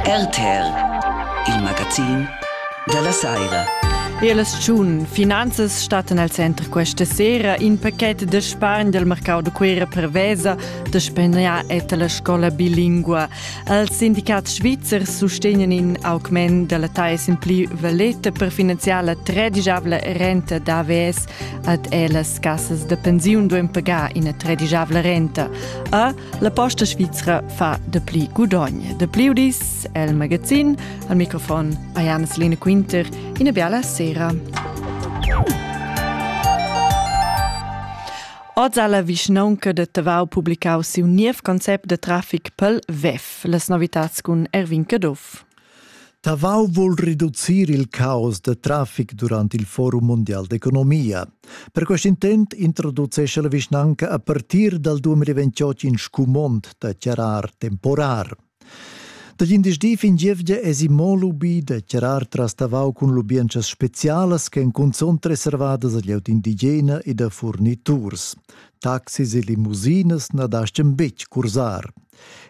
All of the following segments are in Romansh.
RTL, il magazin della saira. Las tschun finanzas stattan al center questa sera in pachet da spargn del mercau de Cuera prevesa da spegnar et la scola bilingua. Els sindicats svizzers sustegnan in augment della taes in pli valeta per finanziar la tredigiabla renta d'AVS ad ellas cassas de pensiun doen pagar ina tredigiabla renta. A La Posta Svizra fa dapli gudogn. Dapli udis el magazin. Al microfon Ayana Selena Quinter. Ina biala sera. Oz ha la vischnaunca de Tavau publicau siu niev concept de traffic pel WEF. Las novitats cun Erwin Caduff. Tavau vul reducir il caos da traffic durant il Forum mondial d'economia. Per quest intent introducesce la vischnanca a partir dal 2028 in scumond da chiarar temporar. Da glindesdi fin gievgia esi mo lubi da chiarar tras Tavau cun lubientschas specialas che cunzont reservadas a glieud indigena e da furniturs. Taxis e limusinas na daschian betg cursar.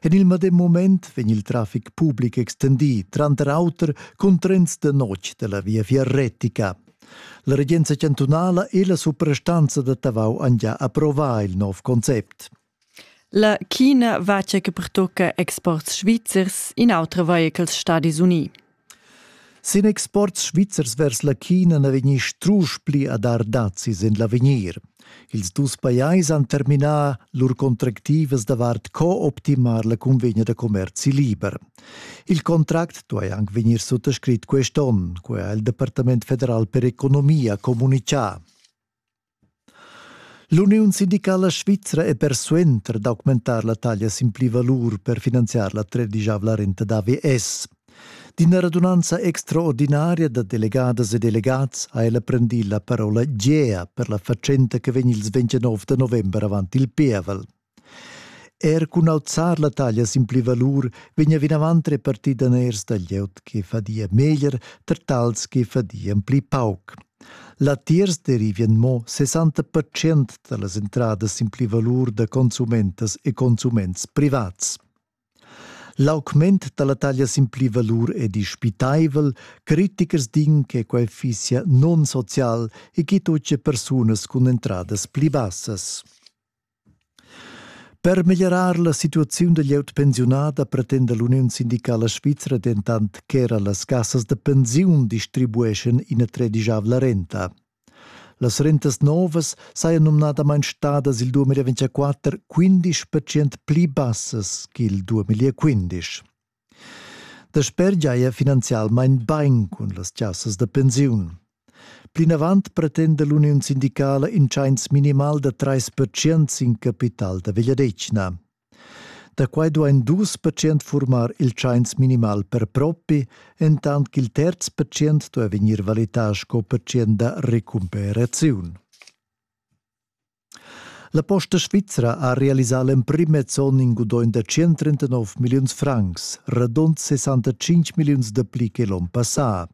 En il medem moment vegn il traffic public extendì, tranter auter cun trens da notg da la viafier retica. La regenza chantunala e la suprastanza da Tavau han già approvà il nov concept. La China vacia che pertocca exports svizzers in autre vehichels Stadis Uniti. Sin exports svizzers vers la China na vegni strusch pli a dar dazis en l'avegnir. Ils dus pajais han terminà lur contractivas davart co-optimar la cunvegna da commerzi liber. Il contract duai anc vegnir suttascrit quest onn, quai ha il Departament federal per economia communitgà. L'uniun sindicala svizra è persuenter d'augmentar la taglia sin plivalur per finanziar la tredischavla renta d'AVS. D'ina radunanza extraordinaria da delegadas e delegats ha ella prendì la parola Gea per la fatschenta che vegn ils 29 da november avant il pievel. Er cun auzar la taglia sin pli valur vegnia vinavant repartì daners da glieud che fadia meglier tar tals che fadian pli pauc. Latiers derivien mo 60% da las entradas sin pli valur da consumentas e consuments privats. L'augment da la taglia sin pli valur è dispitaivel, critichers din che quel fissia non-social e che tutte persunas cun entradas pli bassas. Per meglierar la situaziun da glieud pensiunada pretenda l'uniun sindicala svizra dentant ch'era las cassas da pensiun distribueschan ina tredigiavla renta. Las rentas novas sajan numnadamain stadas il 2024 15% pli bassas ch'il 2015. Dasper giaja finanzialmain bain cun las chasas da pensiun. Plinavant pretenda l'uniun sindicala in tschains minimal da 3% in capital da vegliadetgna. Da quai duain dus percent furmar il tschains minimal per propi, entant ch'il terz percent duai vegnir valità sco percent da recumperaziun. La Posta Svizra ha realisà l'emprim zon in gudogn da 139 milliuns francs, radund 65 milliuns dapli che l'onn passà.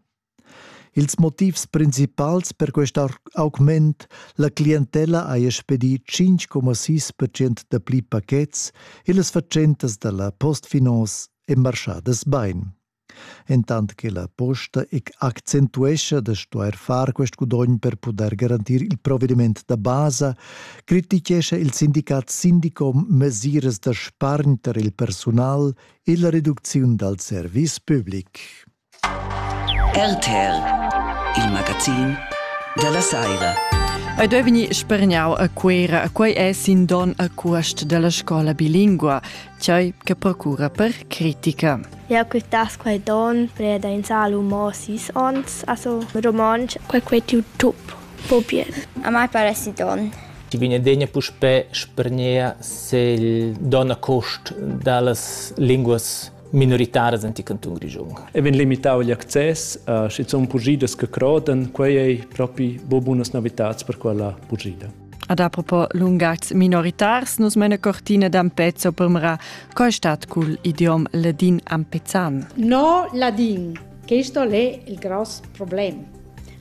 Ils motivs principals per quest augment la clientella haja spedì 5,6% dapli pachets e las fatschentas da la Postfinance èn marschadas bain. Entant che la posta accentuescha da stuair far quest gudogn per pudair garantir il provediment da basa, crititgescha il sindicat Sindicom mesiras da spargn tar il persunal e la reducziun dal service public. RTL, il magazin da la saira. Ei deu vegnir spergnau a Cuera, quei è sin don a cuast della scola bilingua. Tgei che procura per critica. Jau quitass quei don preda in sal mo sis ons, also romontsch, quei quei tiu tup, po bien. A mai pare si don. Ci viene degna puspè spernea se il don a cost dallas linguas minoritaras anti canton grigiun. E vin limitau gli access, uh, schizun pugidas che croden, quei ei propi bo bunas novitats per quella pugida. Ad apropos lungatgs minoritars, nus mena cortina d'Ampezzo permra co è stat cul idiom ladin ampezan. No ladin. Questo è il gross problem.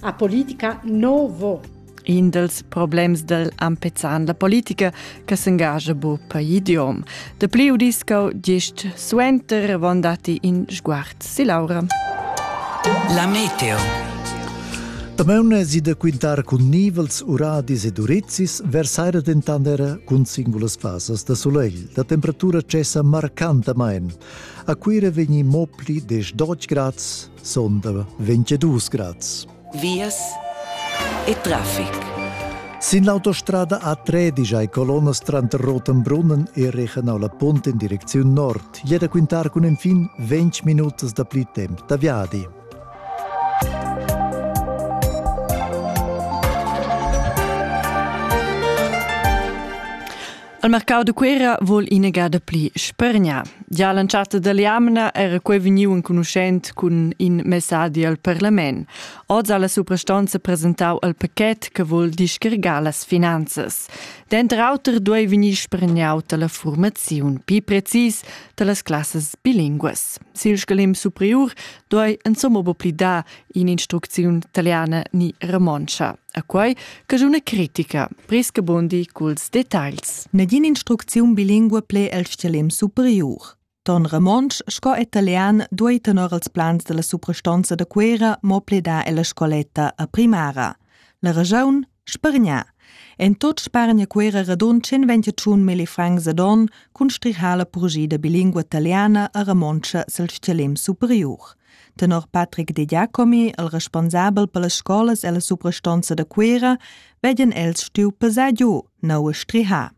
A politica no vo. In dels problems del Ampezan, la politica che s'engagia bu per idiom. De pli udisco gist suenter von dati in sguard Si Laura. La meteo. Damaun si da quintar cun nivels, uradis ed urizis, versaira dentant era cun singulas fasas da sulegl. La temperatura cessa marcantamain. A Cuira vegni mo pli 10 grads, sonda 22 grads. vias e traffic. Sin l'autostrada A13 hai colonnas tranter Rotenbrunnen e Regenau la Punt in direcziun nord. Jeda quintar cun enfin 20 minutas da pli temp da viadi. Il mercau de Cuera vul inegada pli spergnar. Gia l'entschatta dell'jamna era quei vegniu enconuschent cun in messadi al parlament. Oz ha la suprastanza presentau il paquet che vul discargar las finanzas. Denter auter duei vegnir spergnau dalla formaziun pli precis dallas classas bilinguas. Sil scalim superiur duai insomma be pli dar in'instrucziun taliana ni romontscha. A quai caschuna critica, Priske Bundi culs detagls. Nagin'instrucziun bilingua ple el schelem superiur. Ton romontsch sco italian duai tenor als plans della suprastonza da Cuera mo pledar ella scoletta a primara. La ragiun Spargnar. En tot spargna Cuera radund 125 mili francs ad on cun strihar la purgia da bilingua italiana a Ramontscha sil stgalim superiur. Tenor Patrick De Giacomi, il responsabel per las scolas e la suprastonza da Cuera, vegien els stiu pesar giu neu a strihar.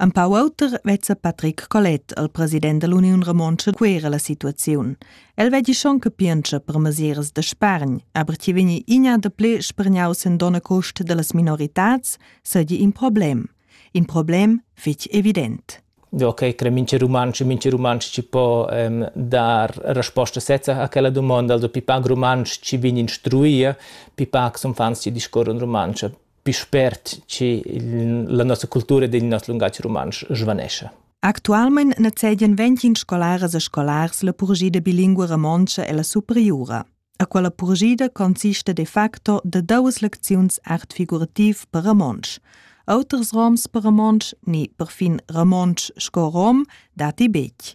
Empau auter vezza Patrick Colette al president dall'Uniun Romontscha Cuera la situaziun. El veggi schon capientscha per mesiras da spargn, aber chi vegni inia da ple spargnaus en donna cost dallas minoritats, seigi in problem. In problem fitg evident. Ok, cre mince romanci, mince romanci ci po um, dar resposta sezza a quella domanda, also pipac romanci ci vegni instruia, pipac son fans ci discorrono romanci. pli spert che la nossa cultura ed il noss lungatg rumantsch svanescha. Actualmein nezzedian ventgin scolaras e scolars la purgida bilingua romontscha e la superiura. A quella purgida consiste de facto de duas lecziuns art figurativ per romontsch. Auters roms per romontsch, ni perfin romontsch sco rom, dati bec.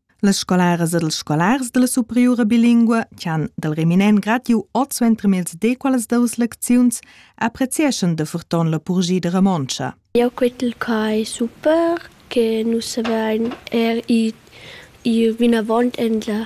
Las scolaras ed els scolars dalla superiura bilingua che han dal reminent gratiu oz suentermiez dequalas duas lecziuns apprezieschan da forton la purgia da Romontscha. Eu quetel quai super che nus avein er i, i vinavant endla